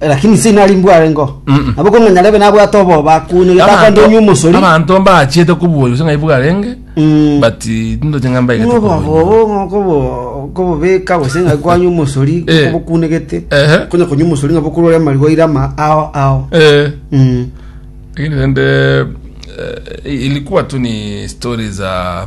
lakini inse inari mbware ngo Mm-mm. nabo kono nyarebe nabwate oboba akunye getakwande onye omosori abanto mbachiete kobuoyo gose ng'ai bwarenge Mm. but tindoche ng'a mbaigete kobuoyo. obobobo kobobeka gose ng'a kwanye omosori Eh. kobokunegete Ehe. konya konya omosori ng'a bokorore amarigo aire ama ao ao Eh, Mm. lakini rende eh, ilikuwa tu ni stori za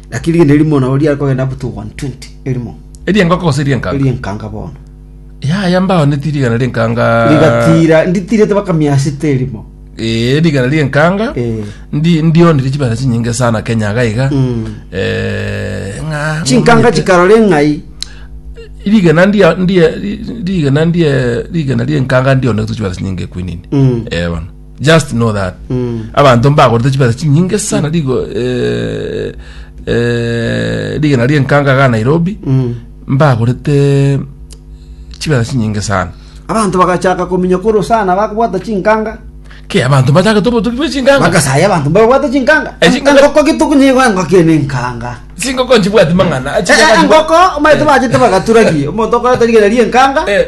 Lakini rigena erimo nabo riare kogenda up to 120 erimo Eriengoko gose erienkanga? erienkanga bono Yaya mbao neti rigana rienkanga. rigatira nditirete baka miasita erimo Eh, rigana rienkanga. Eh. Ndi ndionire chibera chinyinge sana Kenya gaiga. Mm. Eh, nga. chinkanga chikarora eng'ai Rigana ndia ndia rigana ndia rigana rienkanga ndionire chibera chinyinge kwinini. Mm. Eh, bono. just know that abanto mbagorete chibesa chinyinge sana rigo eh, eh, rigena rienkanga ga nairobi mbagorete chibesa chinyinge sana abanto bagachaka kominya koro sana bakobwata chinkanga ke abanto bachake tobotuki bwe chinkanga bagasaya abanto babwata chinkanga Eh, chinkanga- engoko gituku nigo engoko ene nkanga chingoko nchibwati mang'ana Eh, eh, engoko omaete bachete bagaturagi omonto okoreta rigena rienkanga Eh.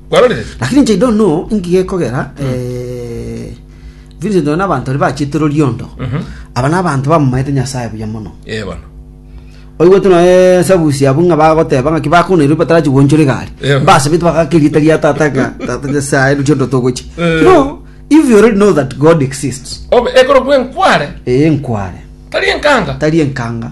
Kwarorire? Lakini inche I don't know inki gekogera eh, Vincent one n'abanto baria bachete Loliondo aba n'abanto bamomaete Nyasaye buya mono Eh, bono. oigwete noe sabusi abwo ng'a bagoteba ng'aki bakoneirwe batarachi gwonchora egari Eh. basabete bagaka erieta ria tata ng'a tata nyasaye Loliondo togochia Eh. no if you already know that God exists Obe- ekorokwa enkware ee nkware tari enkanga tari enkanga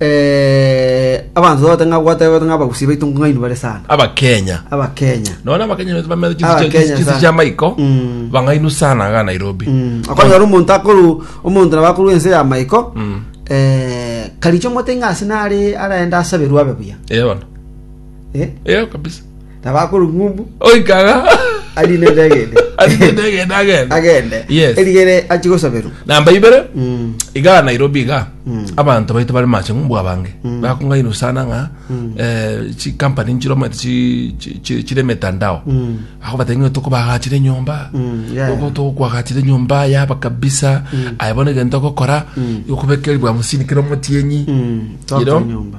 Eh, abanto tote ng'a gwatebete ng'a abagusi baito ng'aini bare sana abakenya abakenya nona abakenya betu bamere Ah, Abakenya chisi sana. chia maiko Mm. bang'ainu sana aga nairobi Mm, okonyora omonto akoru omonto nabo akoru ense ya maiko Mm. eh, karicho mote ng'asi nare araende asaberwe abe buya Eh, bono Eh? Eh, kabisa Tabakuru ng'umbu. Oikaga. Ari nende agende. Ari nende agende agende. Agende. Yes. Erigere achi gosaberwa. Namba ibere. Mm. Iga Nairobi iga. Mm. Abantu baitu bari mache ng'umbu abange. Mm. Bakunga inu sana nga. Mm. Eh, chi company nchiro mwete chi, chi, chi, chire metandao. Mm. Ako batengi tuko bagachire nyomba. Mm. Yeah. Tuko tuko kwa gachire nyomba ya ba kabisa. Mm. Ayabone gento kokora. Mm. Yokubekeri bwa musini kiro mutienyi. Mm. Tuko nyomba.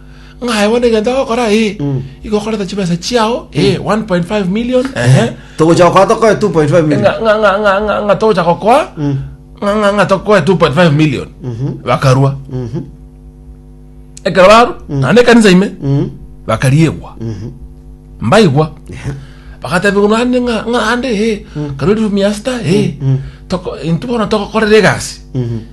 ng'a aye bono egento agokora ee, igo okorete chibesa chiao ee, 1.5 million ehe, togocha gokora tokoe 2.5 million ng'a- ng'a- ng'a- ng'a- ng'a- ng'a togocha gokoa ng'a- ng'a- ng'a tokoe 2.5 million bakarua ekero barwa naende ekanisa ime bakariegwa mbaigwa bagatebiwa naende ng'a- ng'a ande ee, karwa eriomi yasita ee, toko- intwe bono togokorera egasi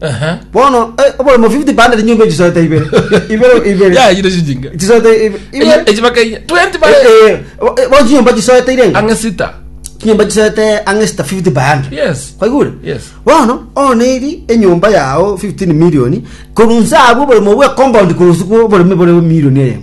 Aha. bono eh, oboremo 50 bande rinyombe chisoete ibere ibere ibere Ya, yire shinjinga. chisoete ibe- Eyi- ibere eyi bakainya. 20 ba- Eh, eh, bo- eh, bono chinyomba chisoete irenga Ang'e sita. chinyomba chisoete ang'e sita 50 bande Yes. kwaigure Yes. bono oneri enyomba yao 15 milioni korunsa abwo oboremo bwe compound korunsa kwa oboreme bore milioni eyemo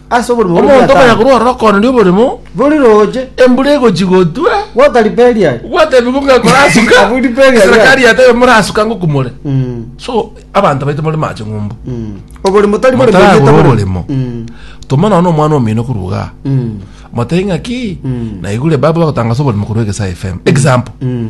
Ase oborimo bore Omonto okonya Omoyatani. korwa ororo koonde oboremo, Bori roche. embura egochia gotwa, Gwata riperi aye. gwatebigwa ng'a korasuka, Abwo riperi aye. serikari yatebe morasuka ng'o kumore. Mm, So, abanto baito more mache ng'umbu. mm. Oborimo tari bori Motaragora boriete bori- oborimo. Mm, Toma nono omwana omino korwa iga. mm, Motebi ng'a ki? Mm. Naigure baba bagotangasa oborimo korwa Egesae FM. Example. mm.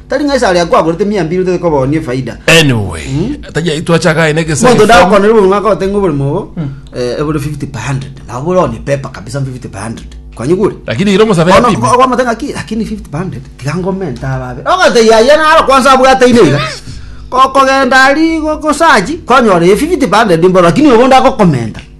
Tari ng'a ase aria kwagorete emiambi ere tokobonia efaida. Anyway, taja- twachaka aye na egesegesa. Monto ndagokonere oborimo agote ng'a oborimo obo eh, ebore 50 per 100. Nabo bore one paper kabisa 50 per 100. Kwanyigure? Lakini ira omosabe Ono yapime. okwamata ng'aki lakini 50 per 100 tiga ngomenta ababe. Ogotee yaya naro kwanza abwate ine iga. Ko- Kogenda ari go- gosachi kwanyora eye 50 per 100 mboro lakini obo ndagokomenta.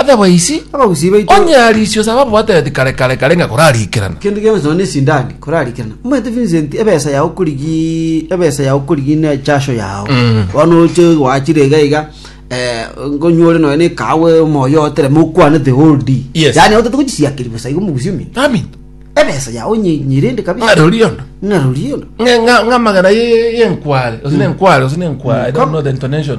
Otherwise, Abagusii baito. onye arisio saba bwatereti kare kare kare ng'a korariikerana. Kende gionsi nonya nesindagi korarikerana. Omanyete Vincent ebesa yao okorigi ebesa yao okorigi ne echasho yao. Mm. Bono oche gwachire iga iga eh ngonywa ore nonya ne kahawa omoyo otereme okwane the whole day. Yes. Yaani otete gochisiakeri bosa igo omogusii ominto. Amen. Ebesa yao onye nyirende kabisa. Ng'a rori yondo. Ng'a rori yondo. Ng'a- ng'a- ng'a amagena ye- ye- yenkware gose Mm. nenkware gose nenkware I don't know the intonation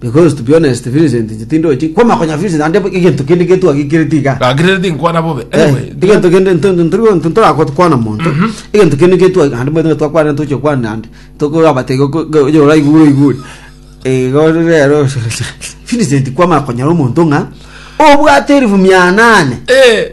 Because to be honest Vincent inche tindochi kwama konya Vincent ande egento kende getwagikereti iga Gaki rero tinkwana bobe. Eh, Anyway, egento kende ntorakwana monto egento kende getwa ande mwete twakwana toche kwana ande tokorabate oyora igure igure igo rero Vincent kwama konyora omonto ng'a obwate elfu mia nane eh,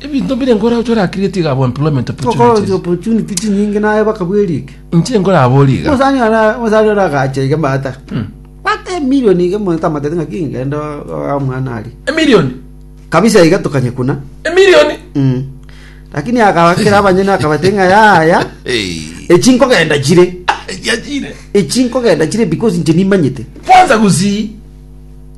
ebinto bire nkora ochora create iga abo employment Toka opportunities opportunity chinyinge naye bakabwerike. inche nkoraborie iga Musani ona musani ona agacha iga mata. Hmm. Mata emilioni iga monto amatete ng'a kingende omwana ari. emilioni Kabisa iga tokanye kuna. emilioni Mm. Lakini akabakera abanyene akabate ng'a yaya echi nkogenda chire. yachire Echi nkogenda chire because inche nimanyete. kwanza gusii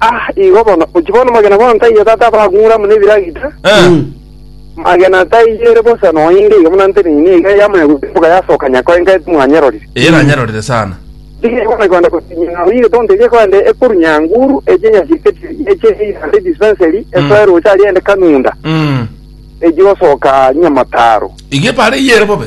Ah, igo bono. Ochi bono magena bono taiyo tata abagung'ura amo nebiragita. Eh. Magena taiyo ere bosa noinde iga buna nte nini iga yamanya gosimboka yasoka nyakao enka ete mwanyerorire. Eye nanyerorire sana. Tiga igo nakwenda gotinya ng'a oige tonto eria ekorende ekoru nyanguru echi enyasiriketi eche ande dispensary esoe roche aria ende kanunda Mm. echi gosoka nyamataro. Iga ebare eye ere bobe.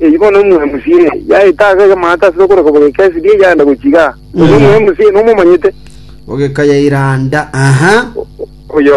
Eyi bono omoemusi eye yaeta ase egemaata ase okorwa koba gekesi ria eyaanda gochia igaa, oyo omoemusi eye nomomanyete? Ogekayairanda, aha. Oyo